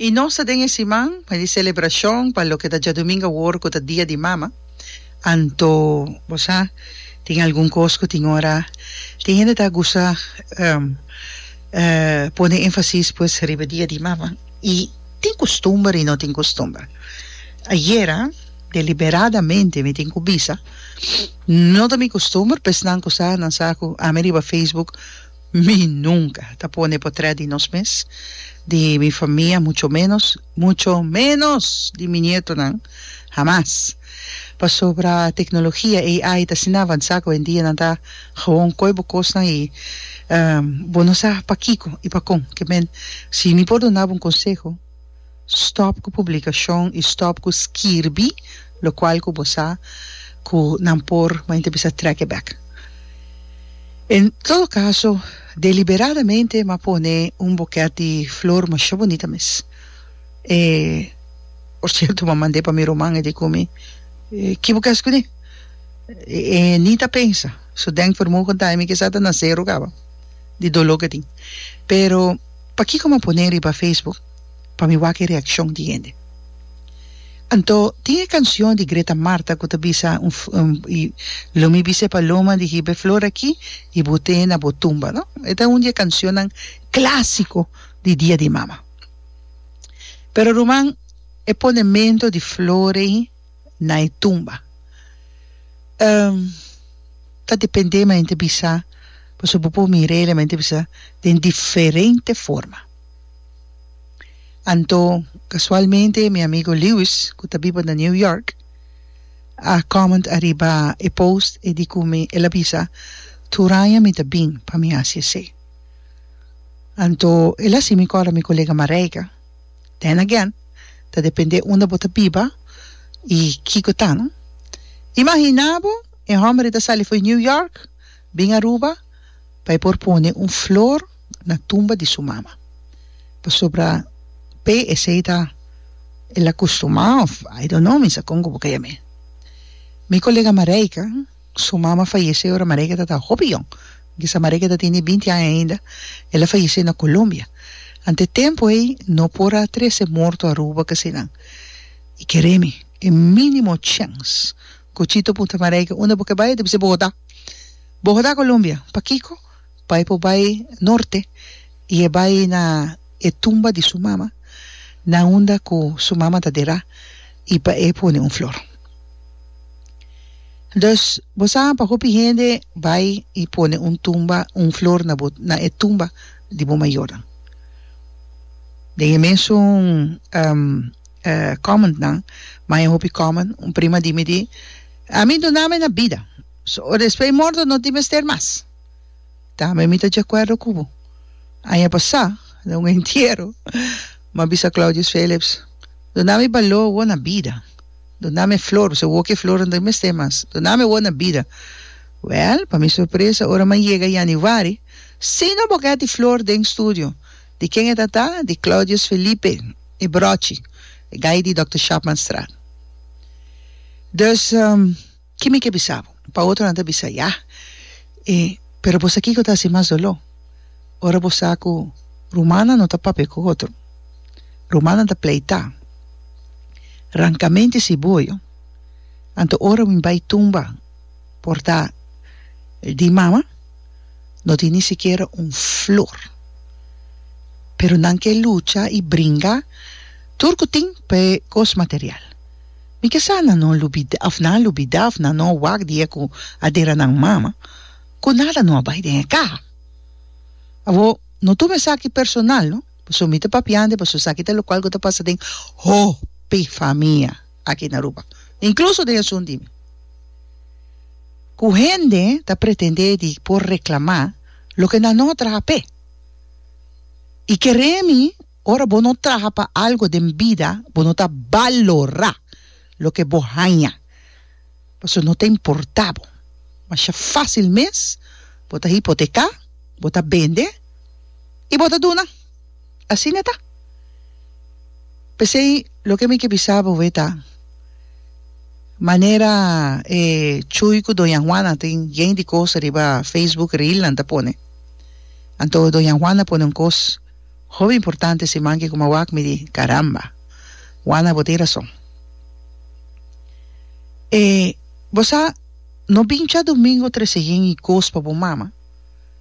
I nos ta den e siman pa di selebrashon pa loke ta djadumingu awor ku ta Dia di Mama. Anto bo sa tin algun kos ku tin ora tin hende ta gusta pone enfasis pues riba Dia di Mama i tin kustumber i no tin kustumber. Ayera deliberadamente mi tin ku bisa no ta mi kustumber p'esnan ku sa nan sa ku ami riba Facebook. Mi nunka ta pone potrèt di nos mes, di mi famia, mucho ménos, mucho ménos di mi nietonan, hamas! Pasobra teknologia, AI, ta asina avansá ku oyendia nan ta gewoon koe bo kosnan i bo no sa pakiko i pakon. Ke men, si mi por duna bo un konseho. Stop ku publikashon i stop ku skirbi lokual ku bo sa ku nan por ma inter bisa trèk'e bèk. En todo kaso, deliberadamente m'a pone un bokèt di flor masha bunita mes. E por sierto m'a mand'é pa mi ruman e di ku mi, Ki bo kes kuné? E ni ta pensa, su den for mogen ta e mi kisa ta nasé rugaba di doló ku e tin. Pero. Pakico m'a pone riba Facebook pa mi wak e reaccion di hende? Anto tin e cancion di Greta Marta cu ta bisa Lo mi bisa e paloma di hiba e flor aki y bute na bo tumba, no? E ta un di e cancionnan clasico di Dia di Mama. Pero ruman, e ponemento di flor ei. na e tumba. Um, ta dependé man hende bisa, paso bo por mir'é la man hende bisa den diferente forma. Anto, kasualmente mi amigo Lewis, ku ta biba na New York, a comment ariba e post, e di ku mi, el a bisa, tur aña mi ta bin pa mi hasi esei. Anto, el a hasi mi kòrda mi kolega Marijke, Then again, ta depende unda bo ta biba y kico ta, no? Imagina bo e hombre ta sali fo'i New York, bin Aruba pa e por pone un flor na tumba di su mama. Pasobra p'e esey ta el acostumá of I don't know, mi sa con cu bo caya mi. Mi colega Marijke, Su mama fayesé ora Maregeta ta hopi yòn, kisa Maregeta tin di binti aña ainda, el a fayesé na Colombia. Ante tempu ei no por a trese morto Aruba ke sinan. I kere mi, e mínimo chèns. Cuchito punta Marege, Unda bo ke bai? E ta bis'é, Bogotá. Bogotá, Colombia. Pakiko? pa e por bai norte y e bai na e tumba di su mama na unda cu su mama ta derá y pa e pone un flor. Dus bo sa pa hopi hende bai y pone un tumba un flor na bo na e tumba di bo mayornan. Den e mesun comment nan maya hopi comment un prima di mi di ami duna mi na bida so ora despues morto no tin mester mas. Tambe mi ta djakuerdo ku bo. Aña pasá, den un entiero, mi a bisa Claudius Phillips, Dunami baló awor na bida. Dunami e flor, pasobra awor ki e flornan ta mester mas. Dunami awor na bida. Wèl, pa mi sorpresa, ora mi a yega yanüari, sin un bokèt di flor den studio. Di ken e ta ta? Di Claudius Felipe, e bròchi, e guy di Dòkter Schaapmanstraat. Dus. Ki mi ke bisa bo? Pa otronan ta bisa, Ya! E, pero bo sa kiko ta hasi mas doló? Ora bo sa ku rumannan no ta papia ku otro, rumannan ta pleitá, ranka menti si boyo, anto ora mi bai tumba portá di mama, no tin ni sikiera un flor. Pero nan ke lucha i bringa tur ku tin pa e kos material. Mi ke sa nan no lubida of nan a lubida of nan no a wak di e ku a dera nan mama ku nada no a bai den e kaha. Abo no tuma esaki personal no paso mi ta papiante paso esaki ta lokual ku ta pasa den hopi famia aki na Aruba inkluso den esun di mi ku hende ta pretende di por reklama loke nan no a traha p'e i kere mi Ora bo no traha pa algo den bida, bo no ta balorá loke bo haña, pasobra no ta importá bo. Masha fásil mes bo ta hipoteká, bo ta bende i bo ta duna. Asina ta. P'esei loke mi ke bisa bo e ta, manera e Chuy ku doña Juana tin yei di kos riba Facebook, rilnan ta pone, anto doña Juana pone un kos. Hopi importante si manke kuma wak mi di caramba Juana bo tin rason e bo sa no bincha domingo tresehin y cos pa bo mama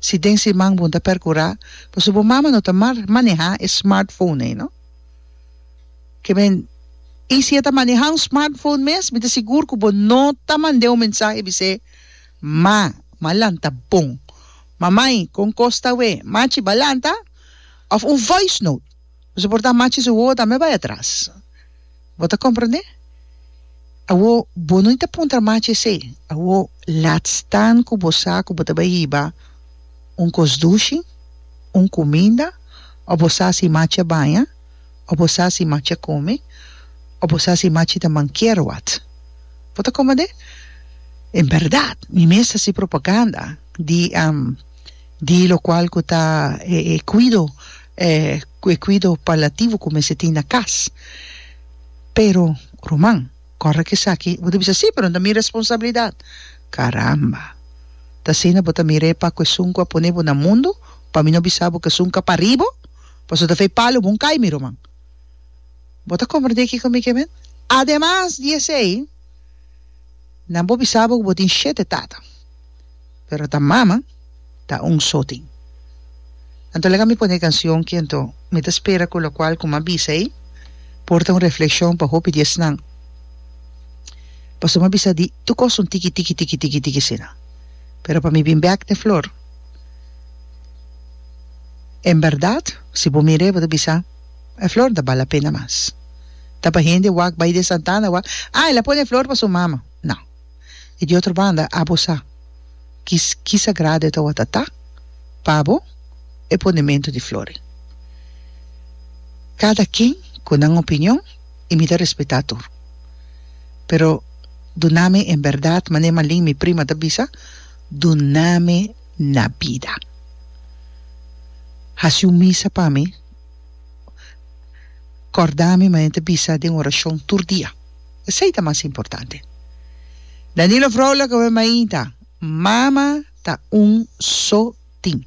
si den siman bon ta percura pasobra bo mama no ta mar maneha e smart phone ei no ke men y si e ta maneha un smart phone mes mi ta sigur ku bo no ta mande un mensahe bis'e ma ma lanta bon Mamai, kon kos ta we? Machi balanta? Òf un voice note. Bo sa por ta machi su wowo tambe bai atras. Bo ta komprendé? Awor, bo no ta puntra machi esei. Awor, laat staan ku bo sa ku bo ta bai hiba un kos dushi, un kuminda òf bo sa si machi a baña. o bo sa si machi a kome, o bo sa si machi ta mankier wòt. Bo ta kome de? En bèrdat, mi mes ta hasi propaganda di di lokual ku ta e e kuido e e kuido palativo ku mester tin na kas. Pero, ruman, kòrda ku esaki bo ta bisa, sí, pero no ta mi responsabilidat. Karamba! Ta asina bo ta mira e pakuesun ku a pone bo na mundu pa mi no bisa bo ku esun ka pari bo? Paso ta fei palo bon cai mi ruman. Bo ta comprende kico mi ke mend? Ademas di esey, nan bo bisa bo cu bo tin shete tata, pero ta mama ta un so tin. Anto laga mi pone e cancion ki anto mi ta spera cu locual cu m'a bisa ei porta un refleccion pa hopi di esnan. Paso m'a bisa di tur cos un tiki tiki tiki tiki tiki asina, pero pa mi bin bek den flor. En berdad, si bo mira e bo ta bisa, E flor ta bala pena mas. Ta pa hende wak bai den Santana wak, Ah, el a pone e flor pa su mama. No. I di otro banda, abo sa ki ki sagrado e tawata ta pa bo e ponementu di flori. Kada ken ku nan opinion i mi ta respetá tur. Pero duna mi en berdad, mané malin mi prima ta bisa, dunami na bida. Hasi un misa pa mi, kòrdami ma e ta bisa den orashon tur dia, esei ta mas importante. Danilo Vrolijk, oe mainta, mama ta un so tin.